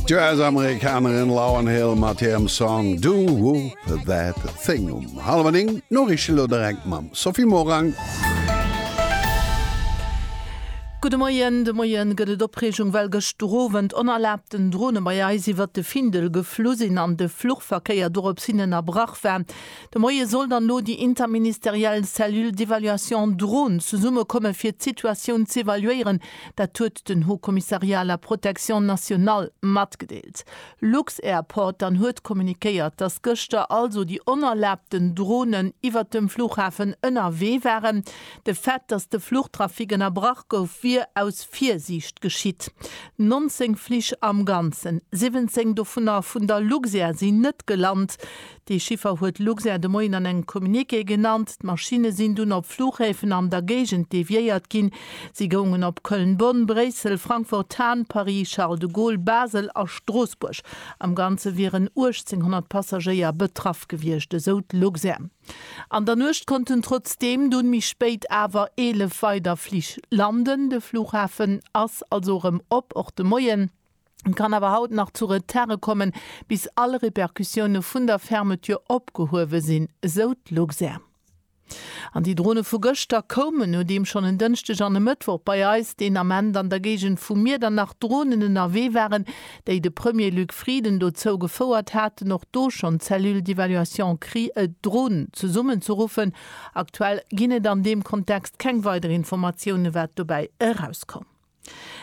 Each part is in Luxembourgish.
D'US-Amerikanerin Lauryn Hill mat hirem Song Do Whoop That Thing um hallwer 9. D'Noriichte lo direkt mam Sophie Morang. Gudde Moien, De Moie gëtt et Opreegung, well gëschtowend onerlaabten Drone bei eis iwwert de Findel geflu sinn an de Fluchverkéier dorops hin ënnerbrach war. De Moie soll dann elo déi interministeriell Cellule d'évaluation Drone zesummekomme fir d'Situatioun z'evaluéieren, Dat huet den Haut Commissariat à la protection nationale matgedeelt. Lux-Airport dann huet kommunikéiert, datt gëschter also déi onerlaabten Dronen iwwert dem Flughafen ënnerwee waren. De Fait, datt de Fluchtrafic ënnerbrach gouf, wier aus Virsiicht geschitt. 19 Flich am Ganzen, 17 dovunner vun der Luxair, sinn net gelant. Dee Chiffer huet Luxair de Moien an engem Communiqué genannt. D'Maschinne sinn dunn op Fluchhäfen an der Géigend deviéiert ginn. Si goungen op Köln-Bonn, Bréissel, Frankfurt-Hahn, Paris-Charles de Gaulle, Basel a Stroossbuerg. Am Ganze wieren 1.800 Passagéier betraff gewiescht, esou d'Luxair. An der Nuecht konnten trotzdeem dunn méi spéit awer 11 weider Flich landen. De Fluchhafen ass also erëm op, och de Moien. Et kann awer haut nach zu Retarde kommen, bis all Repercussioune vun der Fermeture opgehuewe sinn, esou d'Luxair. An déi Drone vu gëschter koumen, nodeem schonn en Dënschdeg an e Mëttwoch bei eis deen Ament an der Géigend vu Miedernach Dronen ënnerwee waren, déi de Premier Luc Frieden dozou gefouert haten, och do schonn d'Cellule d'évaluation Cri et Drones zesummenzeruffen. Aktuell ginn et an deem Kontext keng weider Informatioune wat dobäi erauskoum.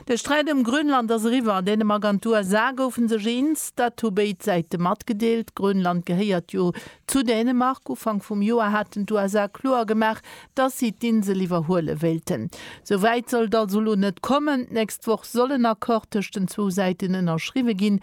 De Sträit ëm Grönland ass eriwwer. Dänemark an d'USA goufe sech eens, dat hu béid Säite matgedeelt. Grönland gehéiert jo zu Dänemark. Ufank vum Joer haten d'USA kloer gemaach, datt si d'Insel iwwerhuele wéilten. Sou wäit soll et also elo net kommen. D'nächst Woch soll en Accord tëscht den zwou Säiten ënnerschriwwe ginn,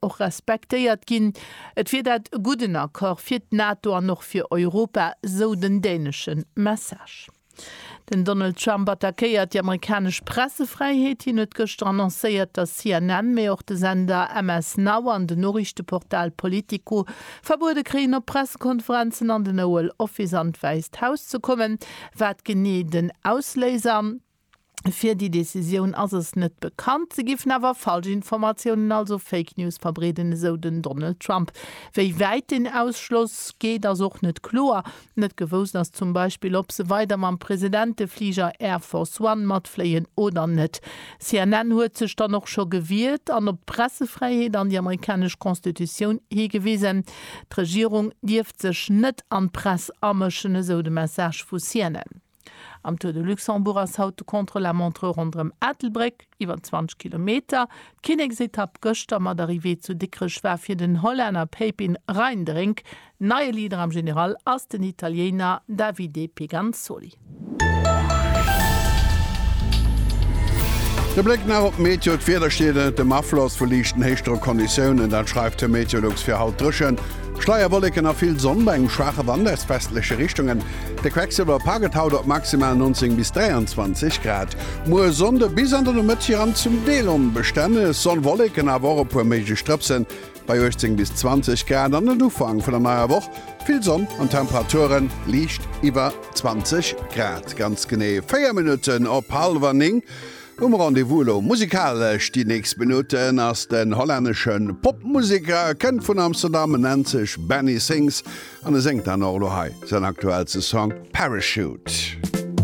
och respektéiert ginn. Et wier dat e gudden Accord fir d'NATO an och fir Europa, sou den dänesche Message. Den Donald Trump attackéiert déi amerikanesch Pressefräiheet. Hien huet gëschter annoncéiert, datt CNN, mee och de Sender MS Now an den Noriichteportal Politico verbuede kréien, op Pressekonferenzen an den Oval Office an d'Wäisst Haus ze kommen. Wat genee den Ausléiser? fir déi Decisioun ass es net bekannt. Se giffen awer falsch Informatiounen, also Fake News verbreeden, esou den Donald Trump. Wéi wäit deen Ausschloss geet, ass och net kloer. Net gewousst ass zum Beispill, ob se weider mam Presidentefliger Air Force One matfléien oder net. CNN huet sech dann och scho gewiert an op d'Pressefräiheet an déi amerikanesch Constitutioun higewisen. D'Regierung dierft sech net an d'Press amëschen, esou de Message vu CNN. Am Tour de Luxembourg ass haut de Contre-la-montre ronderëm Ettelbréck, iwwer 20 Kilometer. D'Kinneksetapp gëschter mat Arrivée zu Dikrech war fir den Hollänner Pepijn Rijnderink. Neie Leader am General ass den Italieener Davide Peganzoli. De Bléck nach op d'Meteo, D'Wieder steet ënnert dem Afloss vu liichten Héichdrockconditiounen, dat schreift de Meteolux fir haut, Dréchent, Schleierwolleken a vill Sonn bei engem schwaache Wand aus westleche Richtungen. De Quecksilver paket haut op maximal 19 bis 23 Grad. Muer Sonnde bis an de Nomëtt jië an zum Deel onbestänneg Sonnwolleken, awer och e puer méiglech Drëpsen bei 18 bis 20 Grad. An den Ufank vun der neier Woch, vill Sonn an d'Temperature liicht iwwer 20 Grad. Ganz genee 4 Minutten op hallwer 9. Um Rendez-vous elo musikalesch déi nächst Minutten ass den hollännesche Popmuseker, kënnt vun Amsterdam, nennt sech Benny Sings An e séngt dann och elo hei säin aktuellste Song Parachute.